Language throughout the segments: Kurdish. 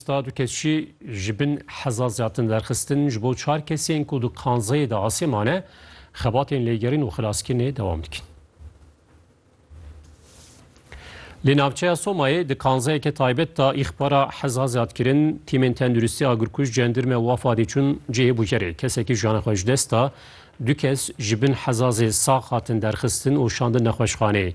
Star du kes jî ji bin hezar ziyadtin derxistin ji bo çar kesên ku di kanzeyê de asê mane, xebatên lêgerîn û xilaskirinê dewam dikin. Li navçeya Somayê di kanzeyeke taybet de îxbara heza ziyadkirin tîmên tenduristî agirkuj cendirme û afadê çûn cihê bûkerê. Kesekî jiyana xwe ji dest da Du kes ji bin hezazê sax hatin derxistin û şandin nexweşxaneyê.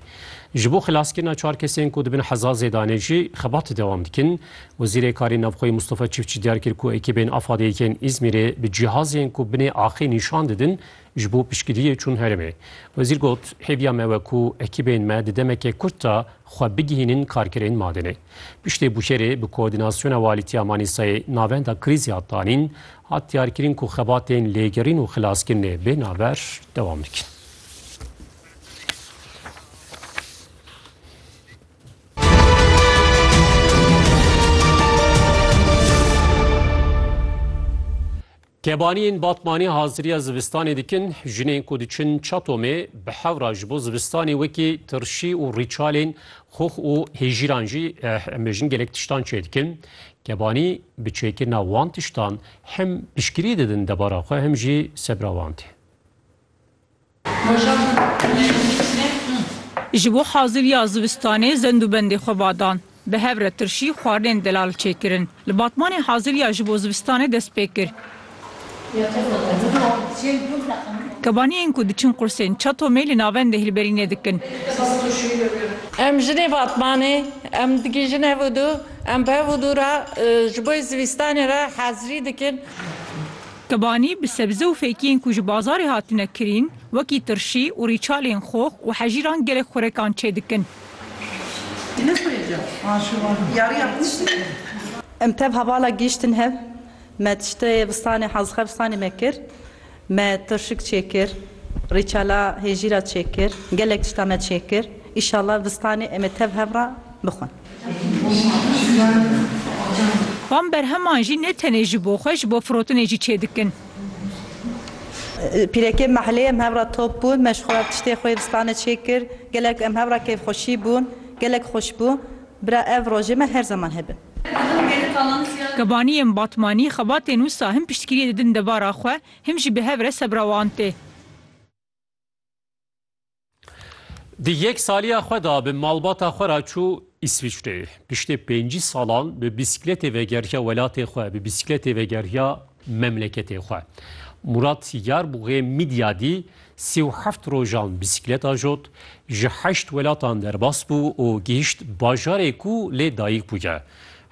Ji bo xilaskirina çar kesên ku di bin hezazê de ne jî xebatê dewam dikin. Wezîrê Karên Navxweyî Mustafa Çiftçî diyar kir ku ekîbên AFAD'ê yên Îzmîrê bi cihazên ku binê axê nîşan didin ji bo piştgiriyê çûn herêmê. Wezîr got, Hêviya me we ku ekîbên me di demeke kurt de xwe bigihînin karkerên Madinê. Piştê Bûşerê bi koordînasyona Walîtiya Manîsayê navenda krîzê hat danîn Hat diyarkirin ku xebatên lêgerîn û xilaskirinê bê navber dewam dikin. Kebaniyên Batmanî haziriya zivistanê dikin, jinên ku diçin Çatomê bi hewra ji bo zivistanê wekî tirşî û rîçalên xox û hêjîran jî eh, em bêjin gelek tiştan çêdikin. Kebanî bi çêkirina wan tiştan hem piştgirî didin debara xwe hem jî sebra wan tê. Ji bo haziriya zivistanê zend û bendê xwe va dan. Bi hev re tirşî xwarinên delal çêkirin. Li Batmanê haziriya ji bo zivistanê dest pê kir. Kebanî yên ku diçin qursên Çatomê li navendê hilberînê dikin. Em jinê Batmanê, em digihîjin hev û dû, em bi hev û dû re ji bo zivîstanê re hezirî dikin. Kebanî bi sebze û fêkiyên ku ji bazarê hatine kirîn wekî tirşî û rîçalên xox û hejîran gelek xurekan çê dikin. Em tev hevala gihîştin hev. Me tiştê vistanê hazxevistanê me kir. Me tirşik çêkir, rîçela hêjîra çêkir, gelek tişta me çêkir. Îşallah vistanê em ê tev hev re bixwin. Van berheman jî ne tenê ji bo xwe, ji bo firotinê jî çêdikin. Pîrekê mahilê em hev re top bûn. Me ji xwe re tiştê xwe yê vistanê çêkir. Gelek em hev re kêfxweşî bûn. Gelek xweş bû. Bira ev rojê me her zeman hebin. Gabanî yên Batmanî xebatên wisa him piştgiriyê didin devara xwe, him jî bi hev re sebra wan tê. Di yek saliya xwe de bi malbata xwe re çû Îsviçreyê. Piştî pêncî salan bi bîsîkletê vegeriya welatê xwe, bi bîsîkletê vegeriya memleketê xwe. Murat Sîgar bi wê Midyadî sî û heft rojan bîsîklet ajot, ji heşt welatan derbas bû û gihîşt bajarê ku lê dayîk bûye.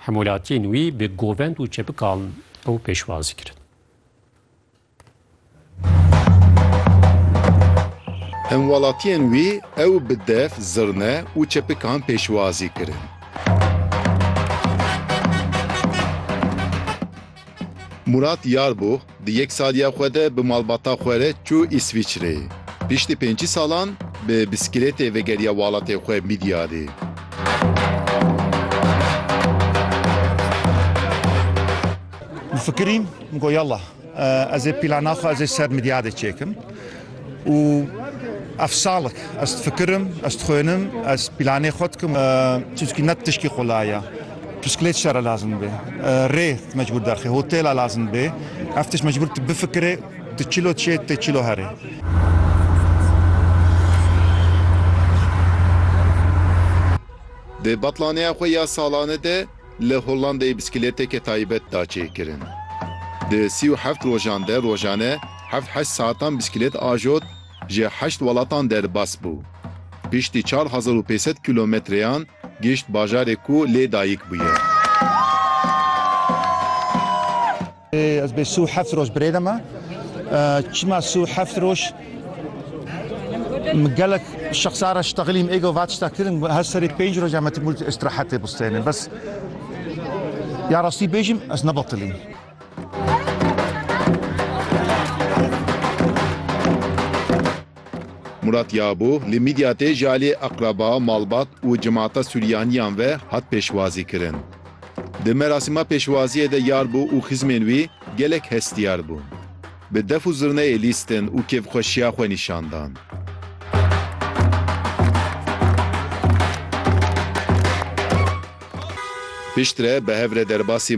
Hemolatiyên wî bi govend û çepikan ew pêşwazî kirin. Hemwelatiyên wî ew bi dev, zirne û çepikan pêşwazî kirin. Murat Yarbûx di yek saliya xwe de bi malbata xwe re çû Îsviçrê. Piştî pêncî salan bi biskilêtê vegeriya walatê xwe Midyadê. Difikirîm, min got yallah. Ez ê plana xwe ez ê ser midyadê çêkim û ev salek ez difikirim, ez dixwênim, ez planê xwe dikim. Çunki ne tişkî qulay e. Pisklêt şere lazim dibe, rê mecbûr derxê, hotêla lazim dibe. Ev tişt mecbûr tu bifikirê, tu çilo çê, tu çilo herê. Di betlaneya xwe ya salane de, Li Hollandeyê bisikleteke taybet da çêkirin. Di sî û heft rojan de rojane heft heşt saetan bisiklet ajot ji heşt welatan derbas bû. Piştî çar hezar û pênc sed kîlometreyan gihişt bajarê ku lê dayik bûye. Ez bê sû heft roj birêde me. Çima sû heft roj? Min gelek şexsa re ştexilî min êgo va tişta kirin, her serê pênc roj em hetim û îstirahetê bistênin. Bes ya rastî bêjim ez ne betilîm. Murat Yabo li Midyatê ji aliyê eqreba, malbat û cemaata Sûriyaniyan ve hat pêşwazîkirin. Di merasîma pêşwaziyê de yar bû û xizmên wî gelek hestiyar bûn. Bi def û zirneyê lîstin û kêfxweşiya xwe nîşan dan. Piştre bi hev re derbasî